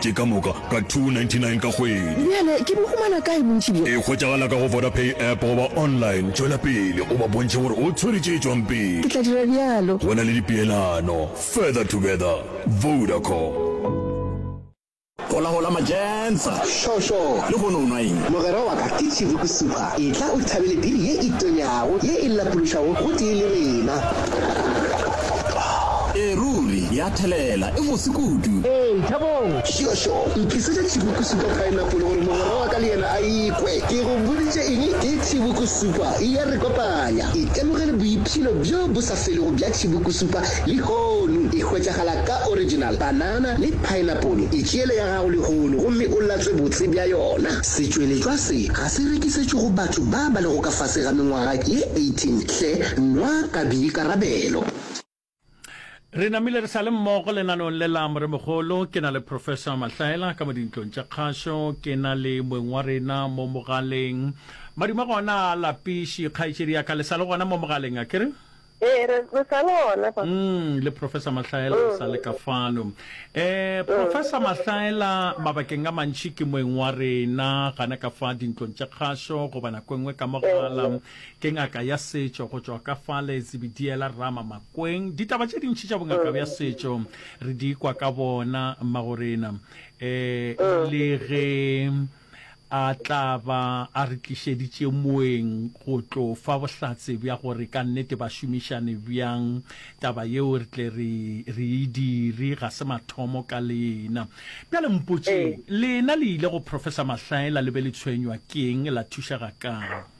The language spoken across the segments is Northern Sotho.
Ke ka moka ka R2.99 ka kgwedi. Bjale ke bo humana kae bontši bjo? E hwetšagala ka go Vodapay app goba online. Tšwela pele o ba bontšhe gore o tshwere tše tšwang pele. Ke tla dira bjalo. Go na le dipeelano. Further together. Vodacom. Holahola Majensa! Šo, šo! Lehono o nwa eng? Mogwera wa ka ke Tšhiruku Supa. Etla o thabele biri ye e tonyago, ye e lapološwago gotee le rena. Ee, ruri, ya thelela. E bose kudu. Ee, Thabong! Šo, šo, ntlisetša Thibokusupa paenapole gore mogwera wa ka le yena a e kwe. Ke go boditše eng? Ke Thibokusupa. E ya re kopanya. Itemogele boipshino bjo bo sa felego bja Thibokusupa lehono. E hwetšagala ka original, panana le paenapole. Itšeele ya gago lehono gomme o latswe botse bja yona. Setšweletšwa se ga se rekisetšwe go batho ba ba lego ka fase ga mengwaga ye 18. Hle nwa ka boikarabelo. Re namile re sa le mmogo lenaneong le la Moremogolo. Ke na le Professor Mahlaela ka mo dintlong tša kgašo. Ke na le moeng wa rena mo mogaleng. Madume gona a lapiši, kgaetšedi ya ka. Le sa le gona mo mogaleng, a ke re? Ee, re, re sa le gona fa. Mm, le Professor Mahlaela le sa le ka fano. Eh, Professor Mahlaela mabakeng a mantši ke moeng wa rena, gana ka fa dintlong tša kgašo goba nako e nngwe ka mogala. Ke ngaka ya setšo go tšwa ka fale Zebidiela Rama Makweng. Ditaba tše dintši tša bongaka bja setšo re di kwa ka bona mmagorena um le ge a tla ba a re tlišeditše moeng go tlo fa bohlatse bja gore ka nnete ba šomišane bjang. Taba yeo re tle re re e dire, ga se mathomo ka lena. Bjale mpotšeng, lena le ile go Professor Mahlaela le be le tshwenywa ke'ng, la thušega ka'ng?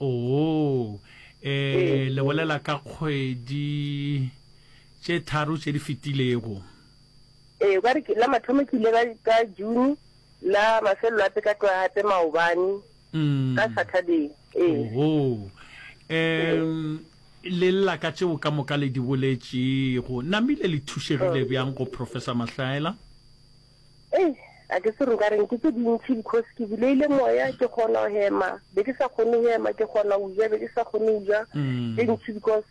Oo, e le bolela ka kgwedi tše tharo tše di fetilego. Ee, gwa re ke, la mathomo ke ile ka, ka June, la mafelelo ape ka tloga gape maobane, ka Saturday. Ee. Oo, e le lla ka tšeo ka moka le di boletšego. Namile le thušegile bjang go Professor Mahlaela? Ei, a ke se nka reng, ke tse dintšhi because ke buleile moya, ke kgona go hema, be ke sa kgone go hema, ke kgona go ja, be ke sa kgone go ja, mm. tse dintšhi because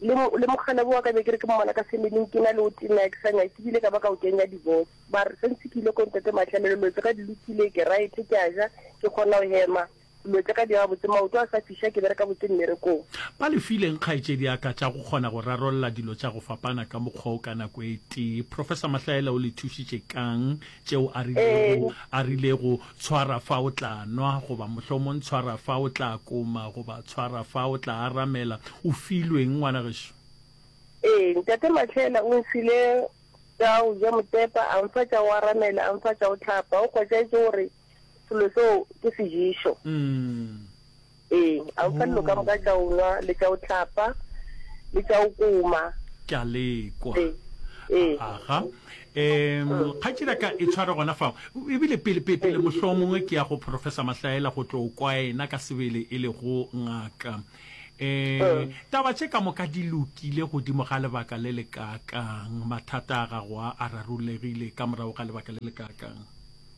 le le mokgalebo wa ka be ke re ke mmona ka semeneng ke na le o tena ke sa nyake ke bile ka ba ka o kenya divorce ba re sentse ke ile ko ntate matlhelelelotse ga di lokile ke right ke a ja ke kgona go hema Dilo tša ka di ema botse. Maoto a sa fiša, ke bereka botse mmerekong. Ba le fileng kgaetšediaka tša go kgona go rarolla dilo tša go fapana ka mokgwa o ka nako e tee. Professor Mahlaela o le thušitše ka'ng tšeo a rilego, a rilego, Tshwara fa o tla nwa, goba mohlomong Tshwara fa o tla koma, goba Tshwara fa o tla aramela? O filwe eng, ngwana gešo? Ee, Ntate Mahlaela o nfile tša go ja motepa, a nfa tša go aramela, a nfa tša go hlapa. O kgotšaetše gore selo seo ke sejišo ee a o fa dilo ka moka tša o nwa le tša o tlapa le tša o koma ke a lekwa ee ee aga um kgatšira ka e tshware gona fao ebile pele pele pele mohlolo mongwe ke ya go professor mahlaela go tlo kwa ena ka sebele e le go ngaka um taba tše ka moka di lokile godimo ga lebaka le le kakang mathata a gago a a rarolegile ka morago ga lebaka le le kakang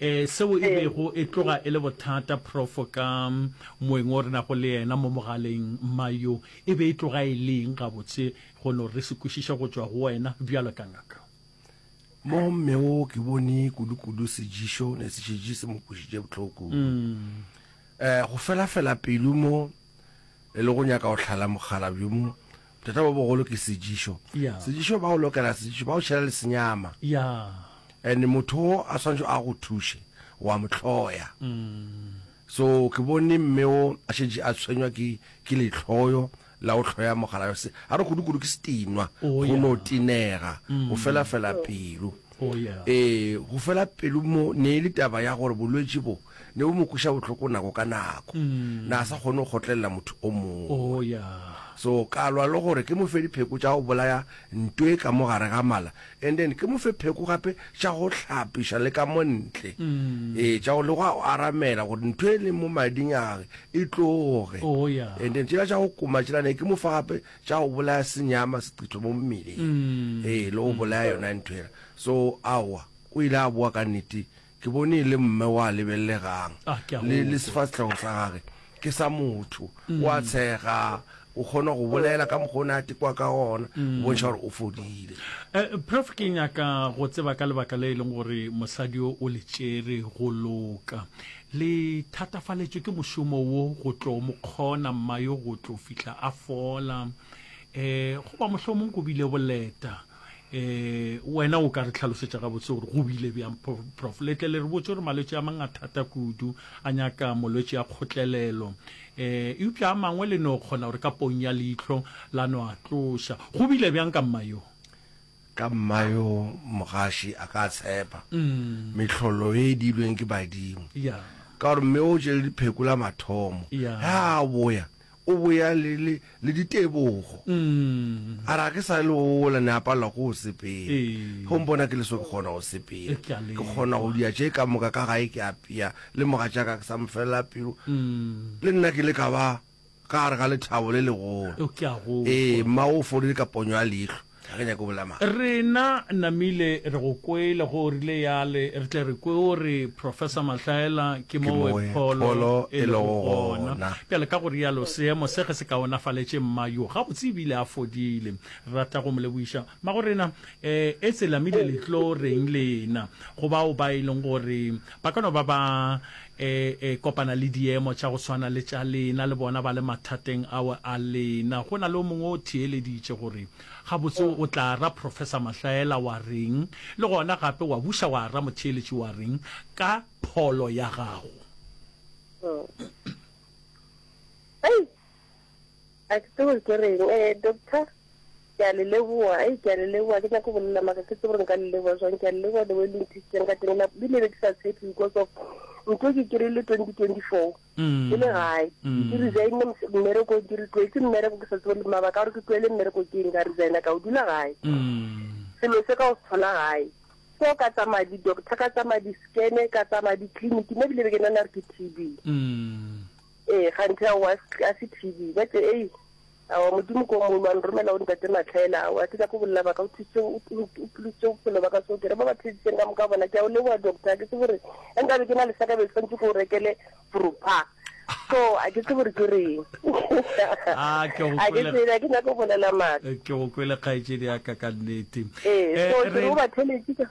Ee, seo e bego e tloga e le bothata, Profo, ka moeng wo re nago le yena mo mogaleng. Mma yo, e be e tloga e le eng gabotse go no re se kwešiše go tšwa go wena bjalo ka ngaka? Mo mme wo ke bone kudu-kudu sejišo ne se šetše se mo kwešiše bohloko kudu. Go fela-fela pelo mo e le go nyaka go hlala mogala bjo mo Bothata bo bogolo ke sejišo. Yeah. Sejišo ba o lokela sejišo, ba o šela le senyama. Yeah. And motho o a swantšho a go thushe, wa mo hloya. Mm. So ke bone mme o a šetše a tshwenywa ke ke lehloyo la go hloya mogalayo se. A re kudu-kudu ke setinwa, Oh, go yeah. no tenega, Mm. go fela-fela pelo. Oh, yeah. Ee, go fela pelo mo ne e le taba ya gore bolwetši bo. ne bo mo kweša bohloko nako ka nako na a sa kgone go kgotlelela motho o mongwe oh ya so ka lwa le gore ke mo fe dipheko tša go bolaya nto e ka mo gare ga mala and then ke mo fe pheko gape tša go hlapiša le ka montle ee tša go le go a o aramela gore ntho e leng mo mading age e tloge oh ya and then tšela tša go koma tšela ne ke mo fa gape tša go bolaya senyama seqitho mo mmeleng ee le go bolaya yona ntho ela so awa o ile a boa ka nnete Ke bone e le mme wa lebellegang, le, le sefahlego sa gage ke sa motho. O a tshega, o kgona go bolela ka mokgwa o ne a tekwa ka gona, go bontšha gore o fodile. Eh, Prof, ke nyaka go tseba ka lebaka le e leng gore mosadi yo o le tšere go loka. Le thatafaletšwe ke mošomo wo go tlo mo kgona mma yo go tlo fihla a fola? Eh, goba mohlomong go bile boleta? um wena o ka re tlhalosetša gabotse gore go bile bjang prof letle le re botse gore malwetse a mang a thata kudu a nyaka molwetse ya kgotlelelo um eupša a mangwe le no kgona gore ka pong ya leihlo la no a tloša go bile bjang ka mma yo ka mma yo mogaši a ka tshepa mm. mehlolo e dilweng ke badimo yeah. ka gore mme o tšele diphekola mathomo yeah. ya boya O boya le, le, le ditebogo. A re, Ga ke sa le ola, ne a palelwa ke go sepela. Ge o mpona ke le so, ke kgona go sepela. Ke kgona go dia tše ka moka, ka gae ke apea, le mogatšaka ke sa mo felela pelo. Le nna ke ile ka ba ka gare ga lethabo le legolo. Ee, mmago o fodile ka ponyo ya leihlo. Ge nyake go bolela maaka. Rena namile re go kwele go o rile yale re tle re kwe o re Professor Mahlaela ke mo we pholo e le go gona. Bjale ka go rialo seemo se ge se kaonafaletše mma yo gabotse e bile a fodile. Re rata go mo lebogiša. Magorena eh etse lamile le tlo reng lena go bao ba e leng gore ba ka no ba ba e, e kopana le diemo tša go swana le tša lena, le bona ba le mathateng ao a lena. Go na le o mongwe o theeleditše gore, Gabotse o tla ra Professor Mahlaela wa reng? Le gona gape wa buša wa ra motheeletši wa reng ka pholo ya gago? A ke tsebe gore ke reng. Eh, doctor, ke a le leboa. Ei, ke a le leboa. Ga ke nyake go bolela, mara ga ke tsebe gore nka le leboa jwang. Ke a le leboa the way le nthušitseng ka teng. La, le ne be ke sa tshepe because of ntho e ke kry-ile twenty twenty four. Ke le gae. Ke resignne mos- mmerekong, ke re tloetse mmereko ke sa tsebe le mabaka a gore ke tloele mmereko ke eng. Ka resigna ka o dula gae. Selo se ka o se thola gae. So ka tsamaya di-doctor, ka tsamaya di-scan, ka tsamaya di-clinic, mme ebile be ke nana re ke T_B. Ee, kganthe ao a s- a se TB. Ba tše, ei, aowa, Modimo ke o mogolo, wa nromela go ntate Matlhaela. Aowa, ke nyaka go bolela baka, o thusitše, o o- o phulotšitše bophelo baka, so ke re ba ba theditšeng ka moka bona. Ke a o leboga, doctor, ke tsebe gore ge nkabe ke na le saka be ke swanetse ke o rekele Vropa. So, a ke tsebe gore ke reng. Ah, ke go A ke kwele- tsebe, a ke nyaka go bolela maaka. Eh, ke go kwele kgaetšedi yaka ka nnete Eh, Eh, so ke re re- o ba theletše ka-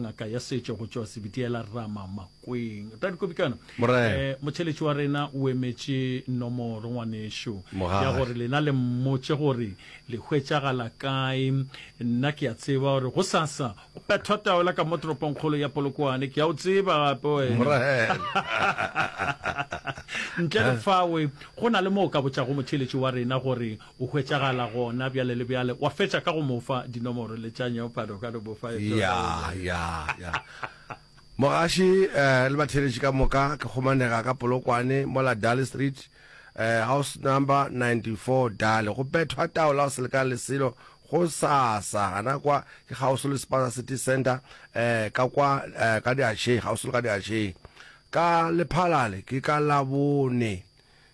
Ngaka ya setšo go tšwa Sebitiela Rama Makweng. Tadi Kobikana, Morena. eh, motheletši wa rena o emetše nomoro ngwanešo Mogale. ya gore lena le mmotše gore le hwetšagala kae. Nna ke a tseba gore gosasa go pethwa taola ka mo toropongkgolo ya Polokwane. Ke a o tseba gape wena. Morena. Ntle le fawe go na le mo o ka botšago motheletši wa rena gore O hwetšagala gona bjale le bjale. Wa fetša ka go mo fa dinomoro le tša nyeopade, o ka no mo fa e tona. Ya, ya, ya. Mogaši le batheeletši ka moka ke kgomanega ka Polokwane, mola Daly Street, house number 94, Daly. Go bethwa taola go selekana le selo gosasa gana kwa, ke kgauswi le Spaza City Centre, ka kwa ka diašeng, kgauswi le ka diašeng. Ka lephalale, ke ka Labone.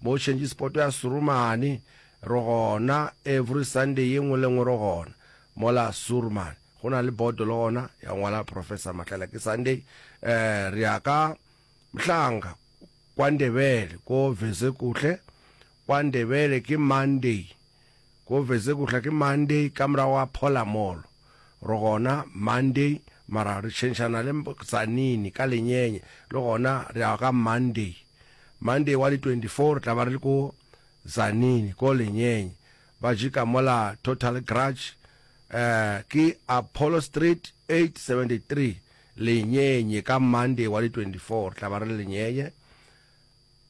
Bo change spot ya Surumani re gona every Sunday ye nngwe le nngwe re gona mola Surumani go na le bodo le gona ya ngwala Professor Mahlela ke Sunday eh re ya ka Mhlanga kwa Ndebele ko Vezekuhle kwa Ndebele ke Monday ko Vezekuhle ke Monday ka morago ga Phola Mall re gona Monday mara re change-ana le Tzanini ka Lenyenye le gona re ya ka Monday Monday wa di 24 re tla ba re le ko Tzaneen ko Lenyeny ba jika mola Total Grudge eh ke Apollo Street 873 Lenyenye ka Monday wa di 24 re tla ba re le Lenyenye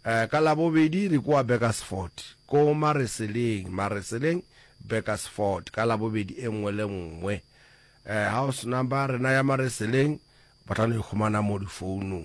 eh ka Labobedi re kwa Beckersford ko Mareseleng Mareseleng Beckersford ka Labobedi e nngwe le nngwe eh house number rena ya Mareseleng ba tla no e khumana mo difounung